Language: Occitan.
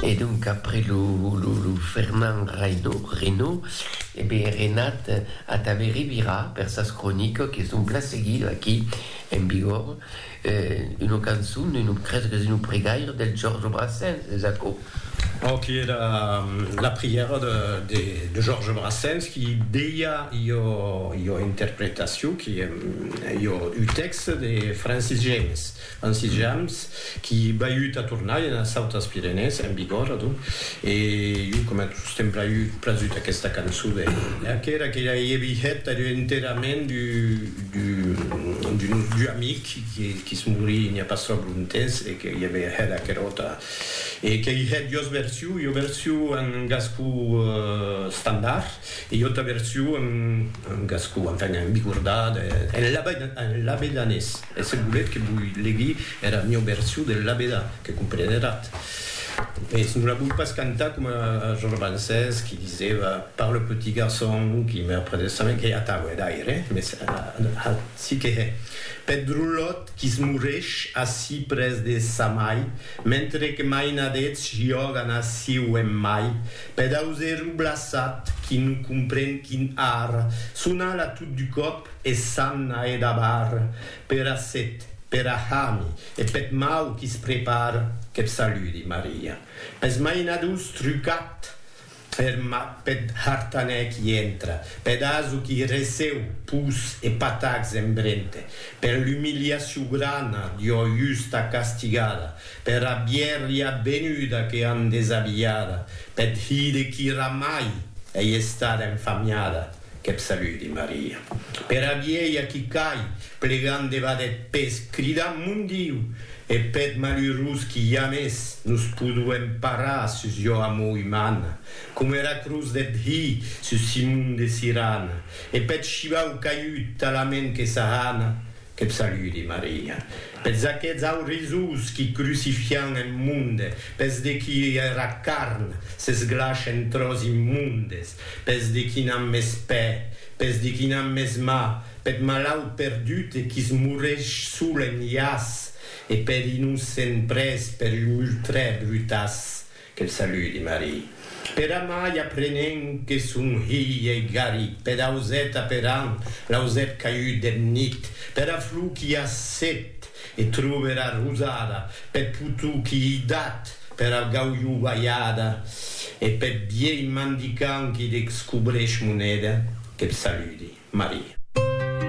E donc après lo Fernand Reynaud, e be Renat a ta ve revirar per sas cronicas que son plan seguidas aquí en Bigorre, una cançon, crese qu'es una pregaira del Georges Brassens, es aquò? Aqui èra la prièra de Georges Brassens qui deia ua interpretacion, un tèxte de Francis Jammes. En Sitjams, qui baiut a tornar ena Sautas Pirenèes, en Bigòrre, adonc, e jo coma tostemp praiut prasut aquesta cançon de Lea, qu'era que ja ei e vihet ath enterrament d'un nostre amic qui's morí n'i a pas tròp lontemps e que i ave hèt aquerò tà e qu'ei hèt jos version, jo version en gascon estandard e jo auta version en gascon, enfin, en bigordà, en labedanés. E se volètz que voi legui era mieu version del labedà, que compreneratz. Mès non la voi pas cantar coma es romancers qui disèva par le petit garçon qui meurt près de sa main, qu'ei atau, hè, d'aire, mès aci que hè, peth drolòt qui es mourèsh ací près de sa mai, mentre que mainadets jògan ací o en mai, peth auserou blaçat qui non compren quin ar, son ala tot du còp, E s'an a edabar pera set, pera hami e peth mau qui's prepara, qu'eth saludi, Maria. Pes mainadors trucat er mat peth hartanèr qui entra, peth aso qui receu pus e patacs en brente, per l'umiliacion grana d'ua justa castigada, pera bièrria venuda que an desabilhada, peth hide qui ramai ei estada enfamiada. Qu'eb saludi Maria. Pera vielha qui cai, plegant debat eth pes, cridant Mon Diu! E peth malurós qui jamès nos poduem parar sus jo amor umana, coma era cruz deth Hi sus Simon de Sirana, e peth shivau caiut talament que s'ahana, qu'eb saludi Maria. Peths aqueths aurisós qui crucifian eth monde, peths de qui era carn s'esglash en tròç immondes, Pes de qui n'an mès pè, pes de qui n'an mès mà, peth malaut perdut e qui's moreish sol en iàs, e per innocent près per un multrè brutàs, que'l saludi Marie. Per amai aprenent que son hilh ei garit peth auset aperant l'ausèt caiut deth nit, pera flor qu'i a set E trove era rosada peth potou qui ei dat pera gaulhovalhada e peth vielh mandicaun qui descobrèsh moneda. Que'b saludi, Maria.